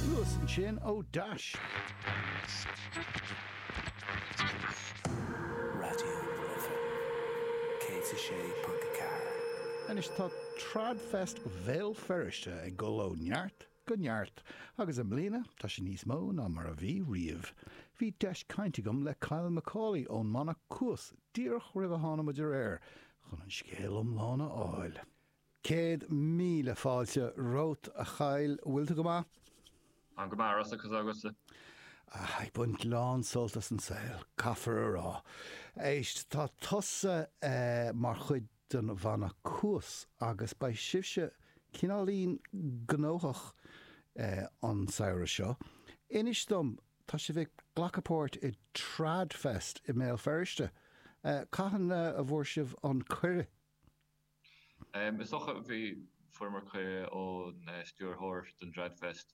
Cuas ansin ó dheas. Raidió na Life 106.4. Anois tá TradFest Bhéal Feirste ag dul ó neart go neart agus i mbliana tá sé níos mó ná mar a bhí riamh. Bhí deis caint agam le Kyle Macaulay ón mbanna Cuas díreach roimh a thána muid ar aer chun an scéal iomlán a fháil. Céad míle fáilte romhat, a Kyle. An bhfuil tú go maith? An-mhaith ar fad agus tusa? Á, ag baint lán sult as an saol, caithfear a rá. Éist, tá tusa mar chuid den bhanna Cuas agus beidh sibhse cineáilín gnóthach an samhradh seo. Inis dom, tá sibh ag glacadh páirt i Trad Fest i mBéal Feirste. Cathain a bhfuair sibh an cuireadh? Is dócha a bhí fuaireamar cuireadh ón stiúrthóir don TradFest,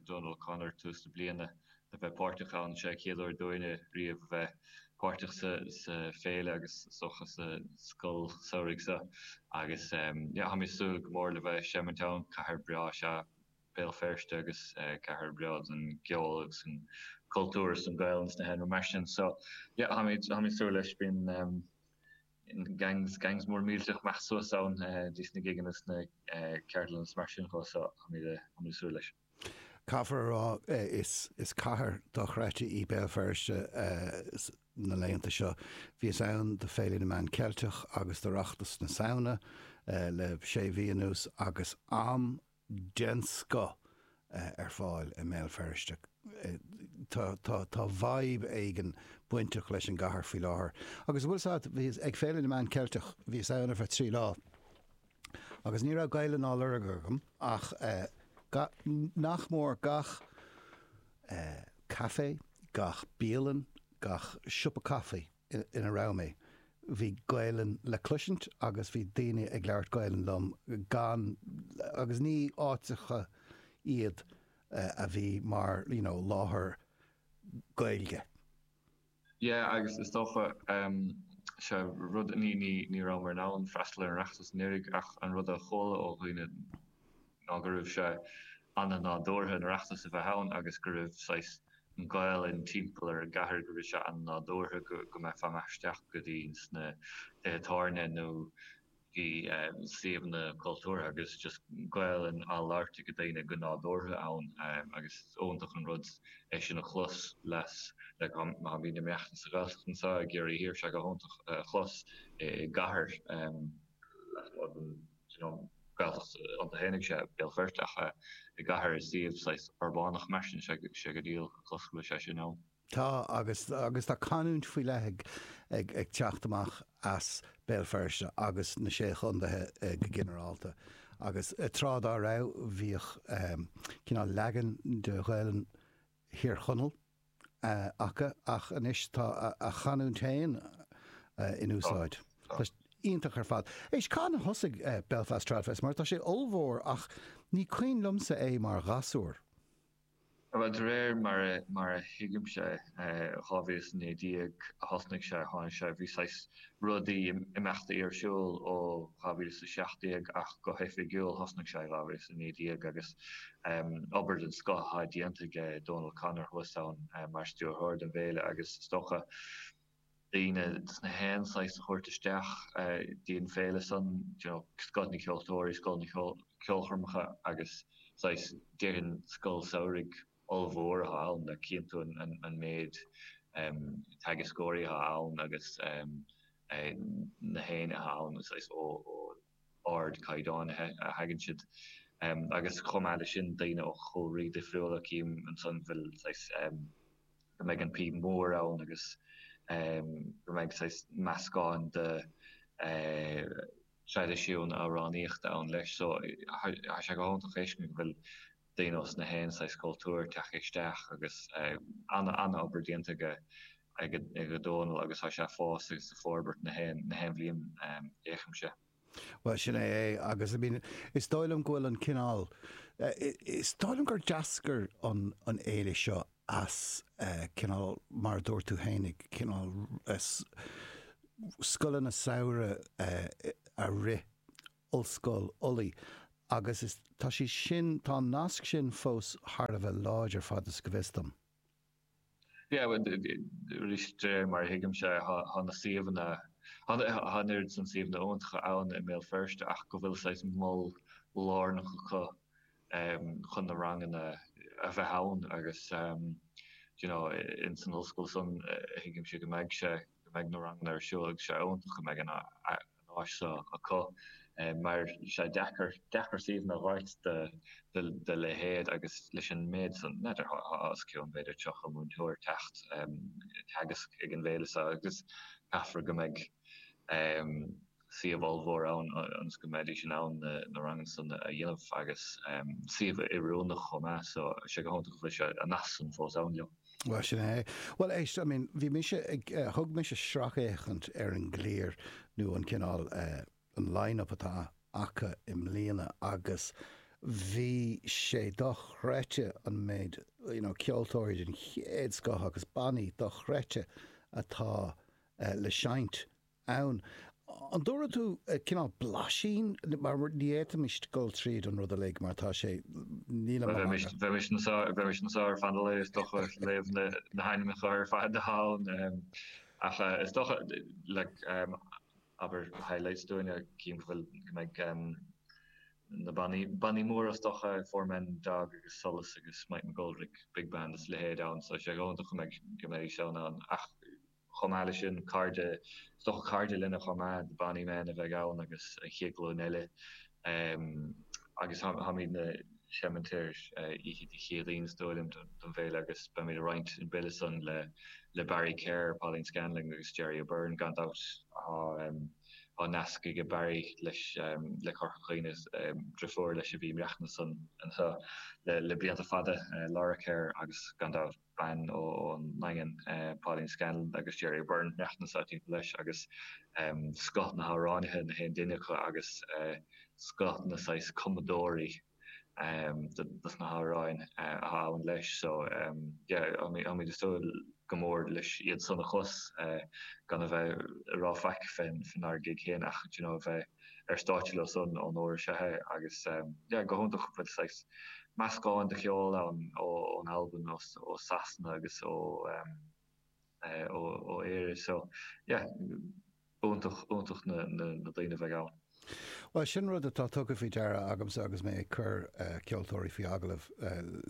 Donal O'Connor, tús na bliana a bheith páirteach ann. Sé an chéad uair dúinne riamh a bheith páirteach sa féile agus is dócha sa scoil samhraidh seo agus tá mé súil go mór le bheith seimint ann. Cathair breá is ea Béal Feirste agus cathair breá don gceol agus an cultúr is don Gael agus na nithe mar sin. So, yeah, tá mé súil leis. Bíonn Gangs, gangs mór millteach againn suas ann dtí sna gigeanna is na ceardlanna is mar sin de so táimid ag súil leis. Caithfear a rá is cathair dochreidte í Béal Feirste na laethanta seo. Bhíos ann do Féile na Meán Ceilteach agus d'Oireachtas na Samhna le sé mhí anuas agus am den scoth ar fáil i mBéal Feirste. Tá vibe éigin bainteach leis an gcathair faoi láthair. Agus bhfuil a fhios agat, ag Féile na Meán Ceilteach, bhíos ann ar feadh trí lá agus ní raibh Gaelainn á lorg agam ach nach mór gach caifé, gach bialann, gach siopa caife. ina raibh mé. Bhí Gaelainn le cloisint agus bhí daoine ag labhairt Gaelainn liom gan, agus ní áiteacha iad a bhí mar, you know, láthair Gaeilge. Yeah, agus is dócha, sea, rud, ní, ní, ní rabhamar in ann freastal ar an Oireachtas anuraidh ach an rud a chuala ó dhaoine ná go raibh sé ana-nádúrtha an tOireachtas a bheith ann agus go raibh saghas an Ghaolainn timpeall ar an gcathair, go raibh sé ana-nádúrtha go mbeifeá amach is isteach go dtí sna tithe tábhairne nó i suíomhanna cultúrtha agus just Gaolainn á labhairt ag daoine go nádúrtha ann agus is iontach an rud é sin a chlos le haghaidh muide inár mbeatha sa Ghaeltacht anseo i gCiarraí Thiar, bhí sé go hiontach a chlos i gcathair lasmuigh den. Is Gaeltacht iontu féin, ag Béal Feirste, ach i gcathair i suíomh saghas urbánach mar sin, is díol suntais go bhfuil sé sin ann. Tá, agus tá canúint faoi leith ag teacht amach as Béal Feirste agus na Sé Chontaethe go ginearálta, agus tráth dá raibh bhíodh cineál leagan de Ghaelainn Thír Chonaill, acu, ach anois tá a gcanúint féin in úsáid. Tá sé iontach ar fad. Éist, cathain a thosaigh Belfast Tradfest, mar tá sé ollmhór ach ní cuimhin liomsa é mar ghasúr. Bhuel, de réir mar a thuigimse, 2019 a thosnaigh sé, tháinig sé, bhí saghas. rud a bhí imeachtaí ar siúl ó 2017 ach go hoifigiúil thosnaigh sé i 2019 agus obair den scoth á déanta aige Dónal Connor thuas ann mar stiúrthóir don bhféile agus is dócha daoine de 's na haon saghas a thabhairt isteach dtí an féile san, you know scoth na gceoltóirí, scoth na gceolchoirmeacha agus saghas déarfainn scoil samhraidh. ollmhór atá ann, le cinntiú an méid teagascóirí atá ann agus 's na héinne atá ann, saghas ó ardchaighdeán a thagann siad. Agus chomh maith leis sin, daoine ó chúlraí difriúla, cím ansan bhfuil saghas, go mbeidh an píb mhór ann agus go mbeidh saghas meascán de thraidisiúin amhránaíochta ann leis. So, tá sé go hiontach a fheiscint go bhfuil. daoine as na haon saghas cultúir tagtha isteach agus an-obair déanta ag Dónal agus tá sé ag fás agus ag forbairt na haon bhliain a fhéachaimse. Bhuel, sin é é agus I mean, is dóigh liom go bhfuil an cineál, is dóigh liom gur d'eascair an fhéile seo as cineál, mar a dúirt tú féin, cineál scoileanna samhraidh a rith, Ollscoil Uladh agus tá sé sin, tá an nasc sin fós thar a bheith láidir, fad is go bhfuil a fhios agam. Yeah, well, arís, de réir mar a thuigimse, tá na suíomhanna, tá an oiread san suíomhanna iontacha ann i mBéal Feirste ach go bhfuil saghas mol lárnach acu chun na ranganna a bheith ann agus, you know, in san ollscoil san, thuigimse go mbeidh sé. go mbeidh na ranganna ar siúl agus sé iontach go mbeidh an áis seo acu mar sé deacair suíomhanna a fháilt dá leithéid agus leis an méid san n'fheadar os cionn b'fhéidir 30 múinteoir ag teacht ag teagasc ag an bhféile seo agus caithfear go mbeidh suíomh ollmhór ann ionas go mbeidís in ann na ranganna san a dhéanamh agus suíomh oiriúnach chomh maith so tá sé go hiontach go bhfuil sé an nasc san fós ann leo. Bhuel, sin é. Bhuel, éist, I mean, bhí mise ag, eh, thug mise sracfhéachaint ar an gclár nó an cineál, eh, an line-up atá acu i mbliana agus bhí sé dochreidte an méid, you know, ceoltóirí den chéad scoth agus bannaí dochreidte atá, eh, le seinnt. ann. An dtabharfaidh tú cineál blaisín, mar ní fhéadfaimis dul tríd an rud uilig mar tá sé, bheimis anseo ar feadh an lae is dócha ag léamh na hainmneacha ar fad ann ach is dócha, like, abair highlights dúinn. Chím go bhfuil, go mbeidh na bannaí, bannaí móra is dócha, Four Men and a Dog agus Solas agus Mike McGoldrick Big Band is a leithéid ann so is iontach go mbeidh, go mbeidh, go mbeidh ann ach. Chomh maith leis sin, cairde, is dócha, cairde linne chomh maith, The Bonny Men a bheidh ann agus an chéad ghlúin eile. Agus táimidne ag seinnt ar oíche Dé Céadaoin, is dóigh liom, don bhféile agus beimid ag roinnt an bille san le Barry Kerr, Pauline Scanlon agus Gerry O'Beirne. Gan dabht tá nasc aige, Barry, le Corca Dhuibhne. Driofúr leis a bhí ina cónaí anseo le blianta fada, Laura Kerr, agus gan dabht. bean ón nDaingean, Pauline Scanlon, agus Gerry O'Beirne, maireachtaint anseo timpeall leis, agus scoth na n-amhránaithe, gach aon duine acu, agus scoth na saghas cumadóirí dos na hamhráin a ghabhann leis. So, yeah, táimid ag súil go mór leis iad san a chlos, gan a bheith ag rá faic fénár gig féin ach, d'you know, a bheith. ar stáitse leo san an uair seo agus tá sé go hiontach go bhfuil saghas meascán de cheol ann ón Albain, ó Sasana agus ó Éire so iontach, iontach na daoine a bheidh ann. Bhuel, sin rud atá tugtha faoi deara agamsa agus mé ag cur ceoltóirí faoi agallamh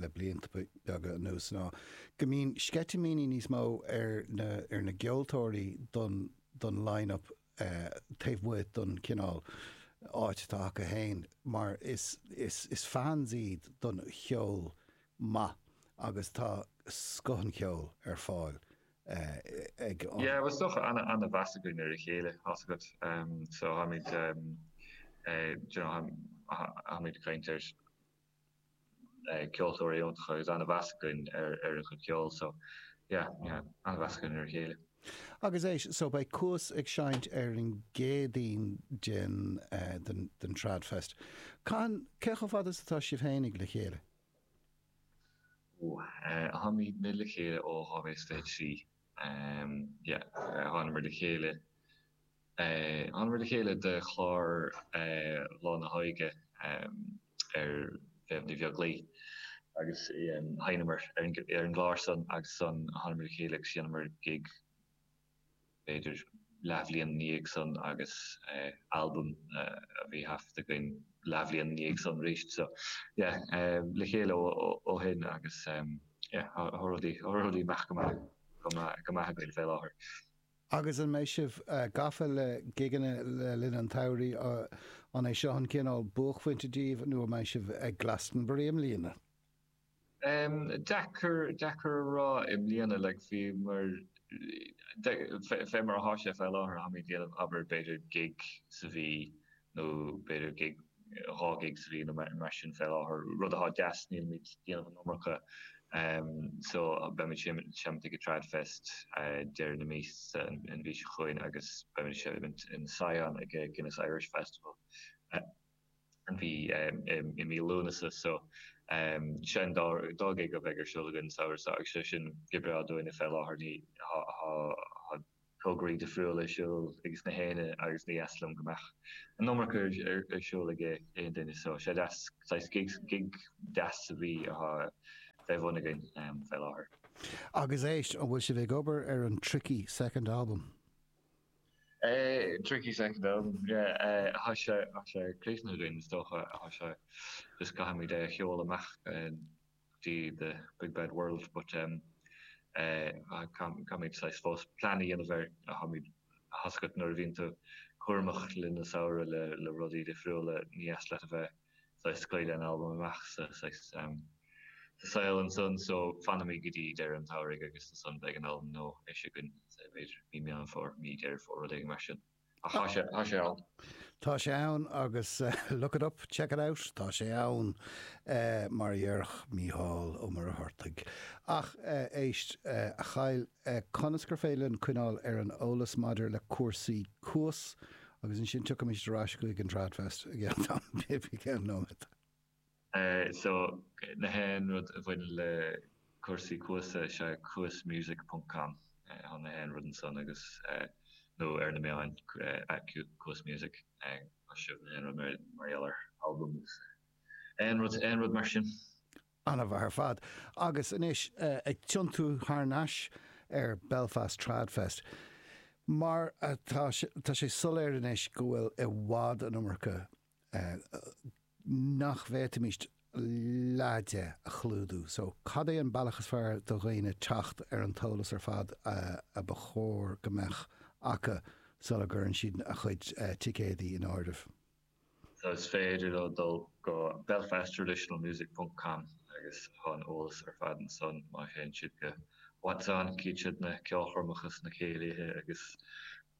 le blianta beaga anuas ná go mbíonn sceitimíní níos mó ar na ceoltóirí don line-up taobh amuigh den chineál áit atá acu féin, mar is fans iad don cheol maith agus tá scoth an cheoil ar fáil ag an. Bhuel tá an-mheas againn ar a chéile, tá's agat, so táimid, you know, táimid ag caint ar. ceoltóirí iontacha agus an-mheas againn ar a gcuid ceoil so yeah yeah an-mheas againn ar a chéile. Agus éist so beidh Cuas ag seinnt ar an gCéadaoin den den den Trad Fest. Cathain cé chomh fada is atá sibh fhéinig le chéile? Ó, eh, táimidne le chéile ó 2023. Thánamar le chéile Thánamar le chéile do chlár Lá na hÓige ar Mhéabh Ní Bheaglaoich agus sheinneamar ar an gclár san agus ansan thánamar le chéile agus dheineamar gig b'fhéidir leathbhliain ina dhiaidh san agus albam a bhí thaifeadta againn leathbhliain ina dhiaidh san arís so yeah le chéile ó shin agus. Agus an mbeidh sibh gafa le gigeanna le linn an tsamhraidh? An é seo an cineál buaicphointe daoibh nó an mbeidh sibh ag Glastonbury i mbliana? Deacair a rá i mbliana. Fé mar atá sé fé láthair, táimid ag déanamh, abair, b'fhéidir gig sa mhí. nó b'fhéidir gig, dhá gig sa bhliain nó mar sin fé láthair, rud athá deas, nílimid déanamh an iomarca so beimid seimnt ag Tradfest deireadh na míosa an mhí seo chugainn agus beimid seimnt in Sion ag Guinness Irish Festival an mhí i mí Lúnasa so seo an dá gig a bheidh ar siúl againn samhradh seo agus thá sé sin go breá dúinne fé láthair mar athá tograí difriúla ar siúl aiges na héinne agus ní dheas liom go mbeadh an iomarca ar siúl ag aon duine so thá sé deas, saghas gig, gig deas a bheith fé bhun againn fé láthair. Agus éist, an bhfuil sibh ag obair ar an tricky second album? Tricky second album, yeah, tá sé, tá sé críochnaithe againn is dócha, tá sé, just caithfimid é a sheoladh amach. go dtí the big bad world but um eh caithfimid saghas fós plean a dhéanamh air thá sé deacair nuair a bhíonn tú cúramach le linn an tsamhraidh le le rudaí difriúla ní dheas leat a bheith saghas scaoileadh an albaim amach sa saghas um sa saol ansan so fanfaimid go dtí deireadh an tsamhraidh agus ansan beidh an albam nua eisithe againn i mí Meán Fómhair mí Dheireadh Fómhair rud éigin mar sin. Tá sé ann. Tá sé ann agus look it up, check it out, tá sé ann, mar a dhéarfadh Mícheál Ó Muircheartaigh. Ach éist, a Kyle, conas gur féidir linn coinneáil ar an eolas maidir le cúrsaí Cuas agus ansin tiocfaimid ar ais chuig an Tradfest i gceann nóiméad? So, na haon rud a bhaineann le cúrsaí Cuas, is ea cuasmusic ponc com atá na haon rud ansan agus, nó ar na meáin, at cuasmusic, geobhaidh sibh na haon rud mar gheall ar albam agus aon rud, aon rud mar sin. An-mhaith ar fad. Agus anois, ag tiontú thar nais ar Belfast Trad Fest, mar atá, tá sé soiléir anois go bhfuil i bhfad an iomarca nach bhféadfaimis leath de a chlúdú. So, cad é an bealach is fearr do dhaoine teacht ar an t-eolas ar fad a ba chóir go mbeadh acu sula gcuireann siad a chuid ticéadaí in áirithe? So, is féidir leo dul go belfasttraditionalmusic.com agus tá an eolas ar fad ansan má théann siad go What's On, cíonn siad na ceolchoirmeacha is na céilithe agus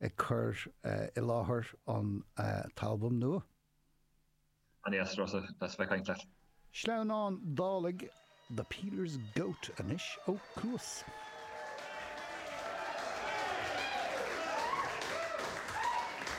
ag cur i láthair an t-albam nua. An-deas, Rossa, a bheith ag caint leat. Sleamhnán Dálaigh, The Peeler's Goat anois ó Cuas.